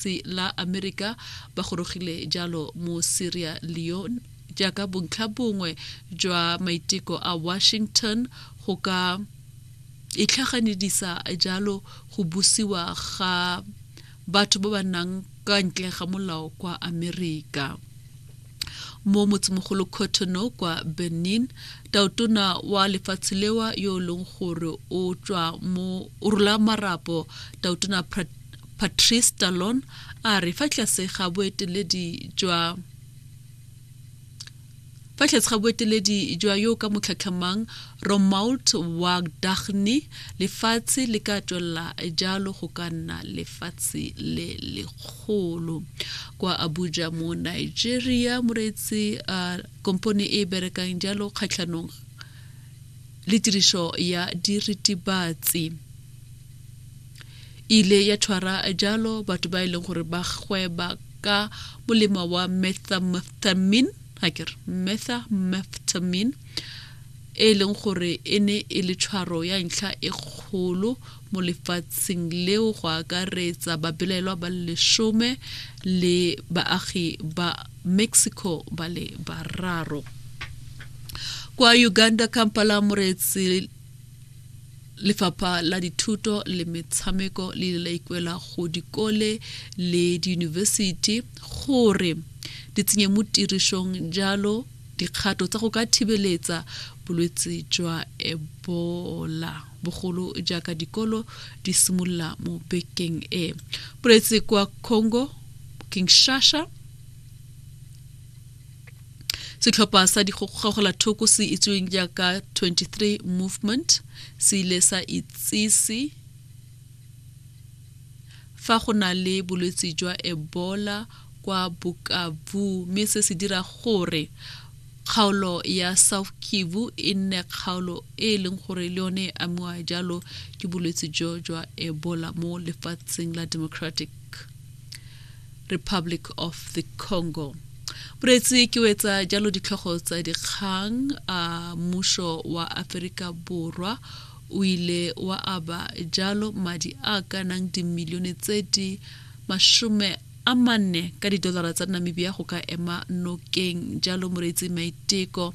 Lefatshe la Amerika ba gorogile jalo mo Sierra Leone jaaka bontlha bongwe jwa maiteko a Washington go ka itlhaganedisa jalo go busiwa ga batho ba ba nang ka ntle ga molao kwa Amerika. Mo motsemogolo Cotonou kwa Benin, taotona wa lefatshe lewa yo e leng gore o tswa mo o rola marapo taotona Patrice Talon a re fa tlase ga boeteledi jwa fa tlase ga boeteledi jwa yo ka motlhatlhamang Romuald Wadagni lefatshe le ka tswelela jalo go ka nna lefatshe le lekgolo kwa Abuja mo Nigeria moreetsi uh, kompone e berekang jalo kgatlhanong le tiriso ya diritibatsi E ile ya tshwara jalo batho ba e leng gore ba gweba ka molemo wa methamphetamine ga ke re methamphetamine e e leng gore e ne e le tshwaro ya ntlha e kgolo mo lefatsheng leo go akaretsa babelaelwa ba lesome le baagi ba mexico ba le bararo kwa uganda kampala moreetsi Lefapha la Dithuto le Metshameko le ile la ikwela go dikole le diyunibesithi gore di tsenye mo tirišong jalo dikgato tsa go ka thibeletsa bolwetse jwa ebola bogolo jaaka dikolo di simolola mo bekeng e boletse kwa congo kinshasa setlhopha sa digogogola thoko se itseweng jaaka 23 movement se ile sa itsise fa go na le bolwetse jwa ebola kwa bokavu mme se se dira gore kgaolo ya south kivu e nne kgaolo e e leng gore le yone e amiwa jalo ke bolwetse jo jwa ebola mo lefatsheng la democratic republic of the congo boreetsi ke wetsa jalo ditlhogo tsa dikgang a mmušo wa aferika borwa o ile wa aba jalo madi a ka nang dimilione tse di masome a manne ka didolara tsa namibia go ka ema nokeng jalo moreetsi maiteko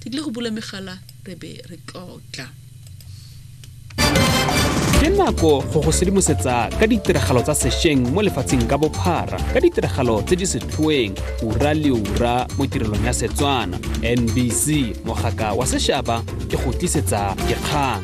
ke tlile go bula megala re be re tlotla ke nako go go sedimosetsa ka ditiragalo tsa sešweng mo lefatsheng ka bophara ka ditiragalo tse di setlhoeng ura le ura mo tirelong ya setswana nbc mogaka wa sešaba ke go tlisetsa dikgang